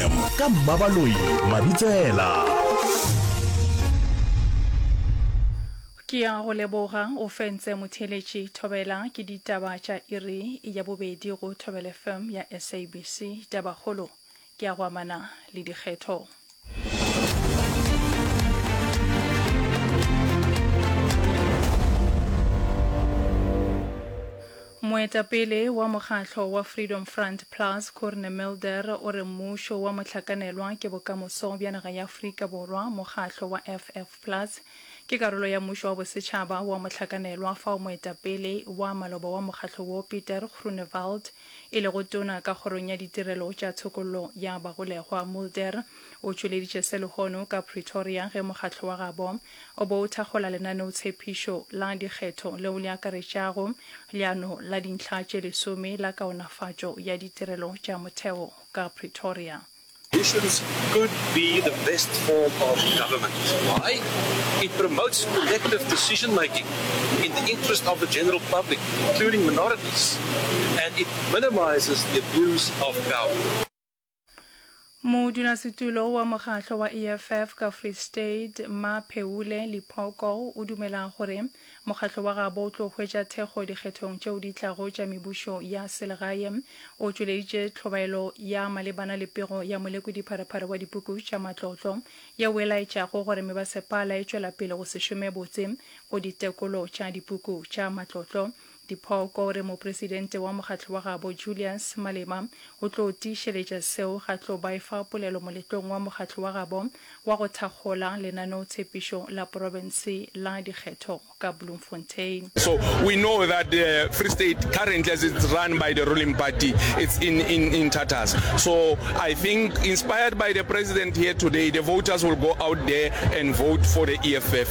FM ka Mmabaloi Mabitsela. Ke ya go leboga o fentse motheeletši Thobela ke ditaba tša iri ya bobedi go Thobela FM ya SABC. Tabakgolo ke ya go amana le dikgetho. Moetapele wa mokgahlo wa Freedom Front Plus, Corne Mulder o re mmušo wa mohlakanelwa ke bokamoso bja naga ya Afrika Borwa. Mokgahlo wa FF Plus ke karolo ya mmušo wa bosetšhaba wa mohlakanelwa fao moetapele wa maloba wa mokgahlo wo Pieter Groenewald e lego tona ka kgorong ya ditirelo tša tshokollo ya bagolegwa. Mulder O tšweleditše se lehono ka Pretoria ge mokgatlo wa gabo o bo o thakgola lenaneotshephišo la dikgetho leo le akaretšago leano la dintlha tše lesome la kaonafatšo ya ditirelo tša motheo ka Pretoria. Elections could be the best form of government. Why? It promotes collective decision making in the interest of the general public, including minorities, and it minimises the abuse of power. Modulasetulo wa mokgatlo wa EFF ka Free State, Mmaphewule Liphoko o dumela gore mokgatlo wa gabo o tlo hwetša thekgo dikgethong tšeo di tlago tša mebušo ya selegae. O tšweleditše tlhobaelo ya malebana le pego ya molekodi-pharephare wa dipuku tša matlotlo yeo e laetšago gore mebasepala e tšwela pele go se šome botse go ditekolo tša dipuku tša matlotlo Diphoko o re mopresidente wa mokgatlo wa gabo Julius Malema o tlo tiišeletša seo ga tlo ba efa polelo moletlong wa mokgatlo wa gabo wa go thakgola lenaneotshepišo la porofense la dikgetho ka Bloemfontein. So we know that the Free State currently as it's run by the ruling party it's in in in tatters. So I think inspired by the president here today the voters will go out there and vote for the EFF.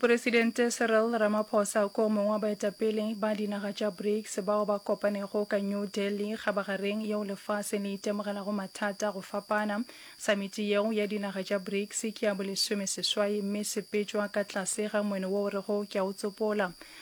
moporesidente cyril ramaphosa ko mongwe wa baetapele ba dinaga tša brics bao ba kopanego ka new delhi kgabagareng yeo lefase le itemogelago mathata go fapana samiti yeo ya dinaga tša brics ke ya bolesome seswai mme sepetšwa ka tlase ga moeno wo o rego ke a o tsopola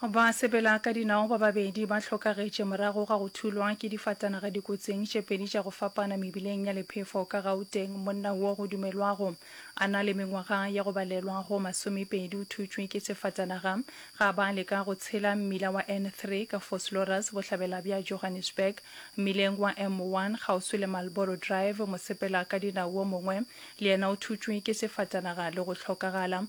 Basepela ka dinao ba babedi ba hlokagetše morago ga go thulwa ke difatanaga dikotsing tše pedi tša go fapana mebileng ya Lephefo ka Gauteng. Monna wo go dumelwago a na le mengwaga ya go balelwa go masomepedi o thutšwe ke sefatanaga ga ba leka go tshela mmila wa N3 ka Vosloorus bohlabela bja Johannesburg. Mmileng wa M1 kgauswi le Marlboro Drive, mosepela ka dinao wo mongwe le yena o thutšwe ke sefatanaga le go hlokagala.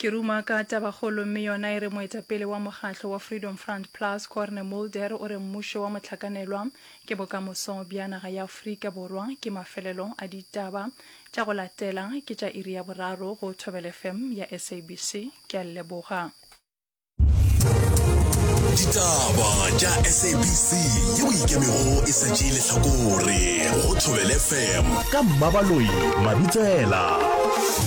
Ke ruma ka tabakgolo mme yona e re moetapele wa mokgatlo wa Freedom Front Plus, Corne Mulder o re mmušo wa mohlakanelwa ke bokamoso bja naga ya Afrika Borwa. Ke mafelelo a ditaba tša go latela ke tša iri ya boraro go Thobela FM ya SABC. Ke a lleboga. Ditaba tša SABC ye o ikemego e sa tšee lehlakore go Thobela FM. Ka Mmabaloi Mabitsela.